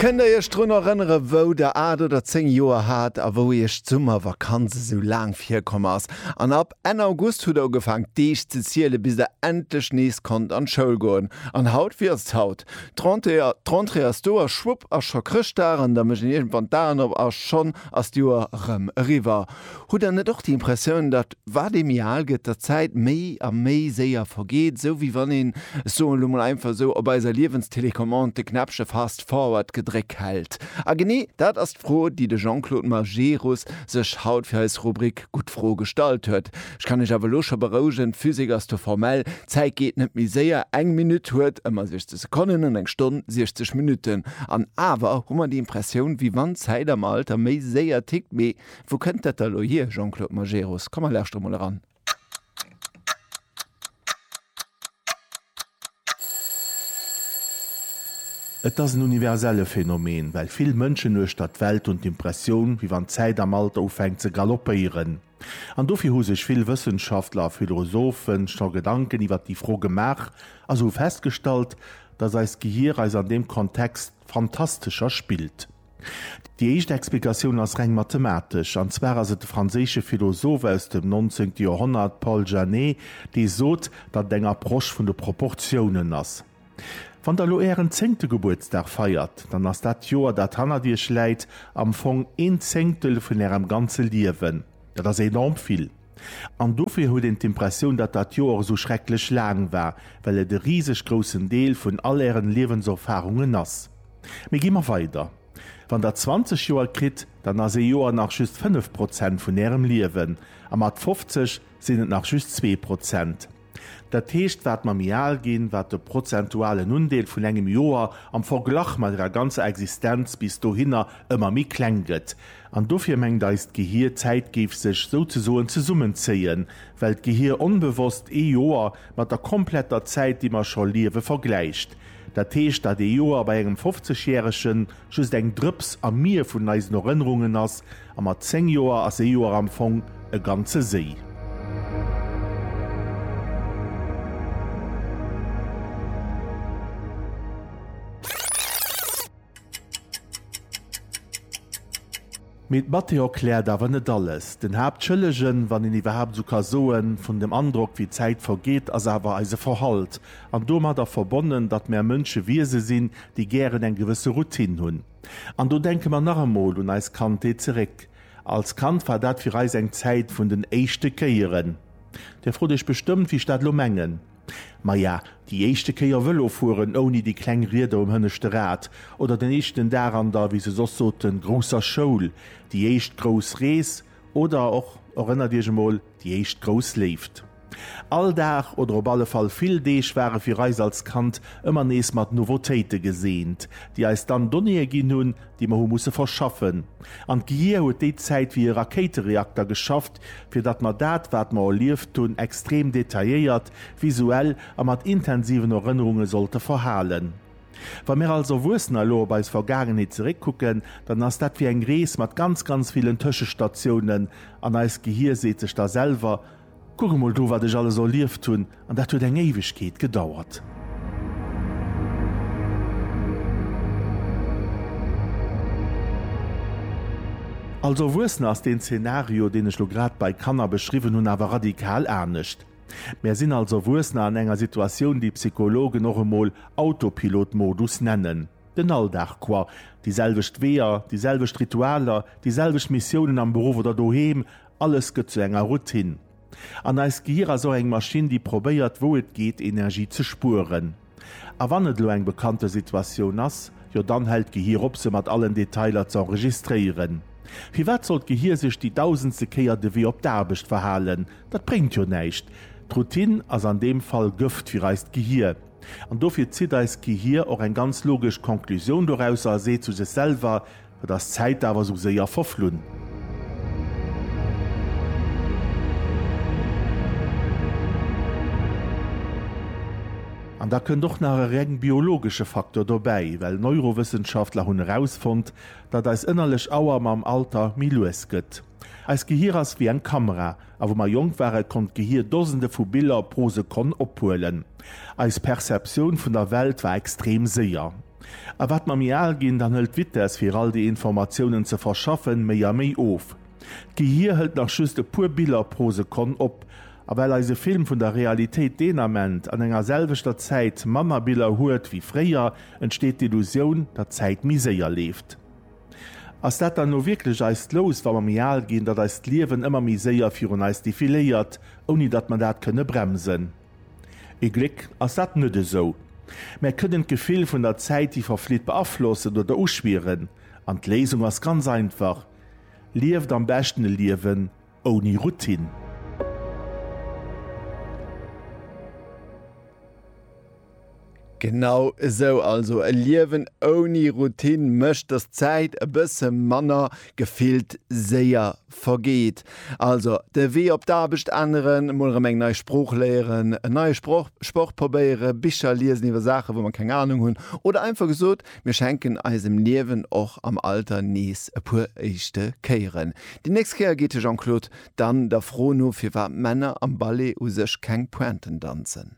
Kënnt der iech drun erënneren, wou der 8 oder 10 Joer hat a wou iech d'Summervakanz esou laang virkomm ass? An ab Enn August hutt der ugefaang d'Deeg ze zielen, bis der endlech nees konnt an d'Schoul goen. An haut? Wéi ass et haut? D'Rentrée ass do a schwupp ass scho Chrëschtdag an da mécht een iergendwann d'Aen op a schonn ass d'Joer erëm eriwwer. Hutt der net och déi Impressioun, datt Wat ee méi al gëtt, der Zäit méi a méi séier vergeet, esou wéi wann een, ech soen elo mol einfach esou, op eiser Liewenstélécommande de Knäppche Fast Forward gedréck hält. A genee dat ass d'Fro, déi de Jean-Claude Majerus sech haut fir eis Rubrik Gutt Fro gestallt huet. Ech kann Iech awer elo scho berouegen, d'Physik ass do formell, d'Zäit geet net méi séier, eng Minutt huet ëmmer 60 Sekonnen an eng Stonn 60 Minutten. An awer hu mer déi Impressioun, wéi wann d'Zäit am Alter méi séier tickt, mee Wou kënnt dat da elo hier, Jean-Claude Majerus? Komm mer lauschtere mol eran. Et ass en universelle Phänomen, well vill Mënschen uechter d'Welt hunn d'Impressioun, wéi wann d'Zäit am Alter ufänkt ze galoppéieren. An dofir hu sech vill Wëssenschaftler a Philosophe scho Gedanken iwwer déi Fro gemaach a se hu festgestallt, datt eist Gehier eis an deem Kontext fantastescher spillt. Déi éischt Explikatioun ass reng mathematesch, an zwar ass et de franséische Philosoph aus dem nonzéngte Joerhonnert Paul Janet, dee sot, datt et eng Approche vun de Proportiounen ass. Wann der elo ären zéngte Gebuertsdag feiert, dann ass dat Joer, dat hannert iech läit, am Fong een Zéngtel vun ärem ganze Liewen. Dat ass enorm vill. An dofir huet een d'Impressioun, datt dat Joer esou schrecklech laang war, well et e riseg groussen Deel vun all Ären Liewenserfarungen ass. Mee gi mer weider, Wann Der 20 Joer kritt, dann ass ee Joer nach just 5 Prozent vun Ärem Liewen, a mat 50 sinn et nach just zwee Prozent. Dat heescht, wat mer méi al ginn, wat de prozentualen Undeel vun engem Joer am Verglach mat ärer ganzer Existenz bis dohinner ëmmer méi kleng gëtt. An dofir mengt eist Gehier, d'Zäit géif sech souzesoen zesummenzéien, well d'Gehier onbewosst ee Joer mat der kompletter Zäit, déi mer scho liewe, vergläicht. Dat heescht, datt ee Joer bei engem 50 Järegen just eng Drëps am Mier vun eisen Erënnerungen ass, a mat 10 Joer ass ee Joer am Fong e ganze Séi. Mee d'Mathé erkläert awer net alles. Den Haaptschëllegen, wann een iwwerhaapt esou ka soen, vun dem Androck, wéi d'Zäit vergeet, ass awer eise Verhalt. An domadder verbonnen, datt mär Mënsche Wiese sinn, déi gären eng gewësse Routine hunn. An do denke mer nach emol un eis Kandheet zeréck. Als Kand war dat fir eis eng Zäit vun den éischte Kéieren. Dir frot iech bestëmmt, wéi ech dat elo mengen. Maja, déi éischte Kéier Vëlo fueren ouni déi kleng Rieder um hënneschte Rad, oder den éischten Dag an der, wéi se soss soten, grousser Schoul, déi éischt grouss Rees, oder och, erënnert Iech emol, déi éischt grouss Léift. All Dag, oder op alle Fall vill Deeg, ware fir eis als Kand ëmmer nees mat Nouveautéite geseent, déi eis dann Donnéeë ginn hunn, déi mer hu musse verschaffen, an d'Geier huet déi Zäit wéi e Rakéitereakter geschafft, fir datt mer dat, wat mer erlieft hunn, extrem detailléiert, visuell a mat intensiven Erënnerunge sollte verhalen. Wa mir als Erwuessener elo op eis Vergaangenheet zeréckkucken, dann ass dat wéi eng Rees mat ganz, ganz villen Tëschestatiounen, an eist Gehir seet sech da selwer, Kuck emol do, wat ech alles erlieft hunn, an dat huet eng Éiwegkeet gedauert. Als Erwuessener ass deen Zenario, deen ech lo grad bei Kanner beschriwwen hunn, awer radikal anescht. Mär sinn als Erwuessener an enger Situatioun, déi Psychologen och emol Autopilot-Modus nennen. Den Alldag quoi, déi selwecht Weeër, déi selwecht Ritualer, déi selwecht Missiounen am Beruff oder doheem, Alles gëtt zu enger Routine. An eist Gehir ass och eng Maschinn, déi probéiert, wou et geet, Energie ze spueren. A wann et elo eng bekannte Situatioun ass, jo dann hält d'Gehir op, se mat allen Detailer ze enregistréieren. Firwat sollt d'Gehir sech déi dausendste Kéier de Wee op d'Aarbecht verhalen? Dat bréngt jo näischt. D'Routine ass an deem Fall Gëft fir eist Gehir. An dofir zitt eist Gehir och eng ganz logesch Conclusioun dorausser a seet zu sech selwer, Et ass d'Zäit awer sou séier verflunn. An da kënnt och nach e reng biologesche Faktor dobäi, well Neurowëssenschaftler hunn erausfonnt, datt eis ënnerlech Auer mam Alter méi lues gëtt. Eist Gehier ass wéi eng Kamera, A wou mer jonk waren, konnt d'Gehir Dosende vu Biller pro Sekonn ophuelen. Eis Perceptioun vun der Welt war extrem séier. A wat mer méi al ginn, dann hëlt d'Vitess, fir all déi Informatiounen ze verschaffen, méi a méi of. D'Gehir hëlt nach just e puer Biller pro Sekonn op. A well eise Film vun der Realitéit deen Ament an enger selwechter Zäit manner Biller huet wéi fréier, entsteet d'Illusioun, datt d'Zäit méi séier leeft. Ass dat dann elo wierklech eist Lous, wa mer méi al ginn, datt eist Liewen ëmmer méi séier virun eis defiléiert, ouni datt mer dat kënne bremsen? Ee Gléck ass dat net esou. Mär kënnen d'Gefill vun der Zäit, déi verflitt, beaflossen oder uschwieren. An d'Léisung ass ganz einfach, Lieft am beschten e Liewen ouni Routine. Genau esou also, e Liewen ouni Routine mécht, dass d'Zäit e bësse manner, gefillt séier, vergeet. Also de Wee op d'Aarbecht änneren, mol erëm eng nei Sprooch léieren, en neie Sproch, Sport probéieren, Bicher liesen iwwer Saachen, wou mer keng Anung hunn, oder einfach gesot, mir schenken eisem Liewen och am Alter nees e puer éischte Kéieren. Déi nächst Kéier geet de Jean-Claude dann der Fro no, firwat Männer am Ballet u sech keng Pointen danzen.